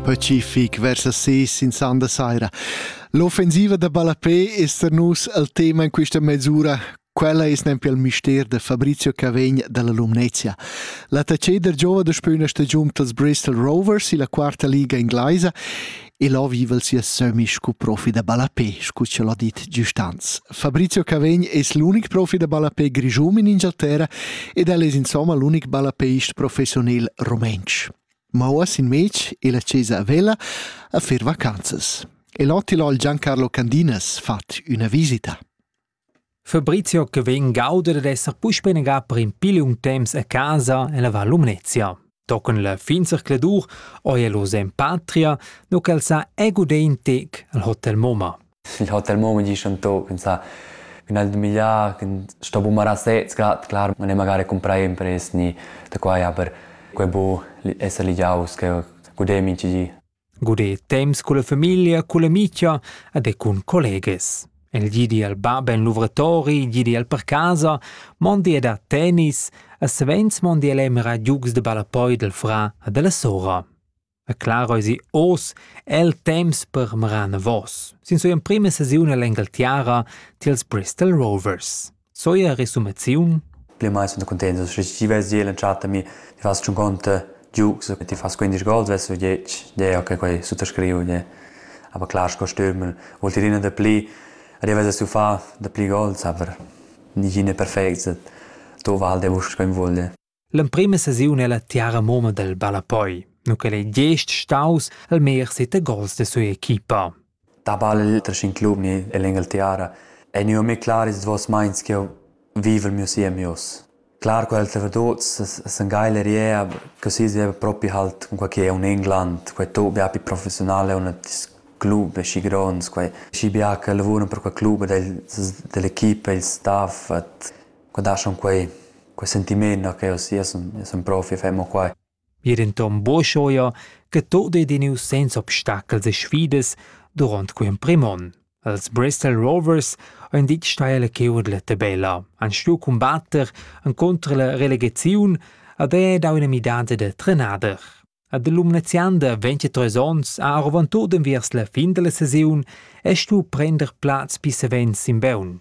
Pacific vers las ses in sanda saira. L'offensiva da ballapé es per nus il tema in questa mesura. Quella es nempe il mister da Fabrizio Cavegn dalla Lumnezia. La taceda giova da spüna stagiun dals Bristol Rovers illa quarta liga inglaisa El ho vivel sia sömmi scu profi da ballapè, scu ch'el ho dit giustanz. Fabrizio Cavegn es l'unic profi da ballapè grischun in Ingialterra ed el es insomma l'unic ballappeist professionel rumentsch. Ma uoss in mez el a chesa a Vella a fer vacanzas. El ho til ho il Giancarlo Candinas fat üna visita. Fabrizio che vegn gauder ed esser puspei negà per in piliun temps a casa en la Val Lumnezia. Tochen la fin zercladur oi el oz en patria, no ch'el sa egudé in tec al Hotel Moma. Il Hotel Moma dice un to, pensa che nel migliar, che sto bumarà sez grad, clar, ma ne magari comprare impresni da qua, ja, per quei bo esser ligiaus, che godem in ci. Guder temps culla famiglia, culla amicia ed e cun collegas. El gidi al bab en luvratori, gidi al per casa, mondi a dar tennis, e savens mondi el emira giugs de ballapoi del fra e della sora. E claro esi os el temps per meran vos. Sin sua emprima sesiun all'Engaltiara tiels Bristol Rovers. Zoja resumaziun Ple mai sun cuntenta sche ti ves iel entschatami, ti fas tschun conta giugs, ti fas 15 gol, ves u dieci, deo che quei suttascriu, de. Aber klar sco stürmel, vuol dir ina da pli, arrivas a sufar da pli gols, aber nigine perfect, tu val de vus sco in vogl. L'emprema sesiun ella tiara mumma del ballapoi, nu ch'el ei gest staus al meglier sete gols de sua equipa. Da ballel tra cinc alumni ell Engeltiara ei gnü a me clar ils duos meins ch'jeu vivel miu siem ius. Clar quels trevadots san gai l'eriea che si sieva propi halt cun quai che è un England, quai to bia più professionale un club schi gronds, quai schi bia che lavurano per quel club ed dell'equipa, il staff, et Qua daschan quei, quei sentiment no che io sun, io sun profi, fai mo quai. Ir intom boschoia che tot ei diniu senza obstacels e sfidas durant quei emprim on. Als Bristol Rovers ein dit steile che urlette bella, han stuiu combatter contro la relegaziun ad è da una midanza de trenader. Ad l'umnezianda 23 ons ha arvantut enviers la fin della saison e stu prender plaz pi savens in beun.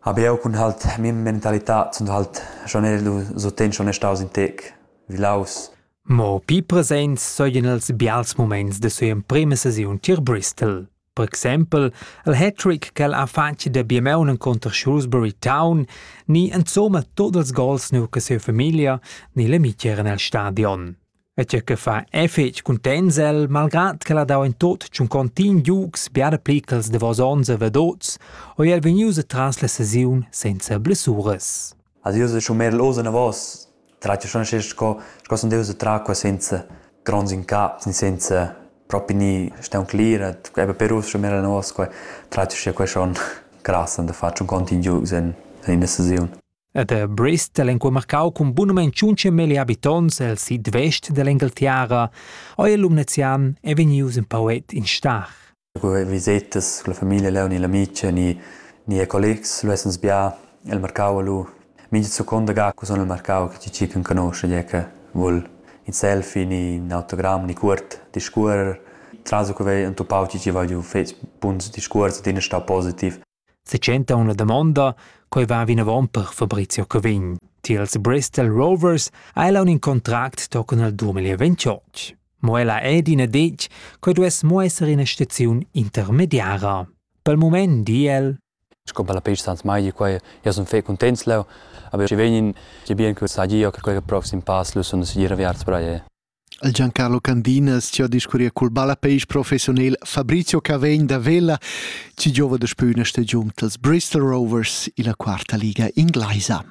hab jeu cun halt mia mentalitad zun halt schon era lu suenter schon staus in tec vilaus. Mo pli presents seigien els bials muments da sia emprema sesiun tier Bristol. Per exempel il hat-trick ch'el ha fatg da Biemaun encunter Shrewsbury Town ni insomma tot ils gols nu che sia famiglia ni l'amici eran el stadion. E tgei che fa è fetg cuntents el, malgrad ch'el ha dau in tot tschuncontin giugs biara pli ch'els davos onns e vedots, ò el vegnius atras la sesiun senza blessuras. Als io se schon mehr los anavos, trat schon sche sco sco son deus tra qua senza grons in cap, senza propri ni steun clirat, e per us schon mehr anavos qua, trat sche qua schon grass an da far tschuncontin giugs in in la sesiun. Ed er Brest el enqua marcau cun bunamein tschuntschamelli habitonts el sid vest dell'Engaltiara, oi el Lumnezian è vegnius in poet in stach. Cu visetas con la famiglia leu ni l'amica ni ni collegs lu essens bia el marcau lu mincha seconda ga cu sun el marcau che chi can conosce gie che vul in selfie ni in autogramm ni cuort discuorrer tras cu vei entupau chi chi va giu fetg buns discuors adina stau positiv. Setschenta una damonda, quei va vinavon per Fabrizio Cavegn. Tiels Bristol Rovers ha ella un contract tochen al 2028. Mo ella è d'ina detg, quei duess mo esser ina staziun intermediara. Per il moment di el Sco per la pista Sans Mai, quai io sono fe contents leu, aber ci vegnin ci bien che sa io che quel proxim pass lu sono sicuro viarts per all'e. Il Giancarlo Candinas ci ha discurriu cul ballapeisch professionel Fabrizio Cavegn da Vella ci giova da spüna stagiun dals Bristol Rovers illa quarta liga inglaisa.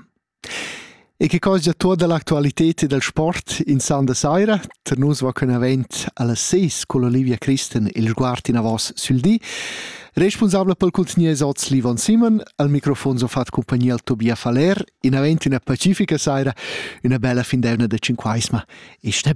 E che cosa tuotta l'actualited e dal sport in san da saira, tar nus va con avent alla ses con Olivia Christen il sguard in avos sül di, responsabla pel cultnier oz Livon Simon, al microfon so fat compagnia al Tobia Faller, in avent una pacifica saira, una bella findeuna da cinquaisma e ste bene.